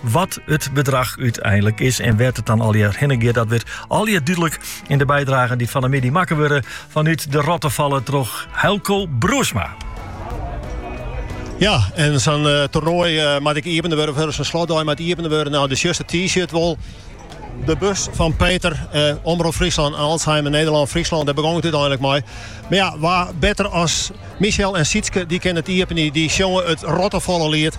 Wat it bedrach úteinlik is en wêr't it dan allegear hinne giet, dat wurdt allegear dúdlik yn de bydragen dy't fan 'e middei makke wurde fanút de Rottefalle troch Heilco Broersma. Ja, en sa'n eh, toernoai eh, moat ek iepene wurde, of sa'n slotdei moat iepene wurde. No, do sjochst it T-shirt wol. De bus fan Peter, eh, Omrop Fryslân en Alzheimer Nederland, Fryslân, dêr begûn it úteinlik mei. Mar ja, wa better as Michel en Sietske, dy kinne it iepenje, dy sjonge it Rottefalle-liet.